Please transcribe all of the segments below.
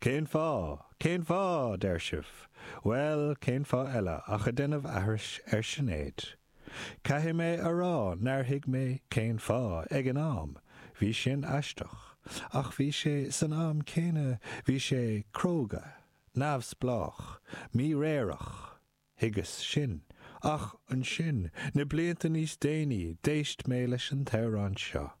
Cén fáth? Cén fáth? a deir sibh. Bhuel, cén fáth eile ach a déanamh aithris ar Shinéad. Caithfidh mé a rá nár thuig mé cén fáth ag an am, bhí sin aisteach, ach bhí sé, san am céanna, bhí sé cróga, neamhspleách, míréireach. Thuigeas sin. Ach ansin, na blianta níos déanaí, d'éist mé leis an amhrán seo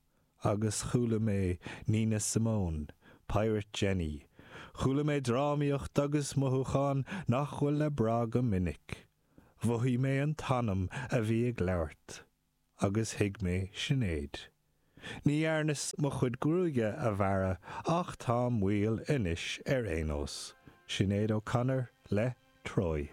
agus chuala mé Nina Simone, Pirate Jenny. Chuala mé drámaíocht agus mothúchán nach bhfuil le brath go minic. Mhothaigh mé an t-anam a bhí ag labhairt. agus thuig mé Sinéad. Ní dhearnas mo chuid gruaige a bhearradh ach táim maol anois ar aon nós. Sinéad O'Connor le Troy.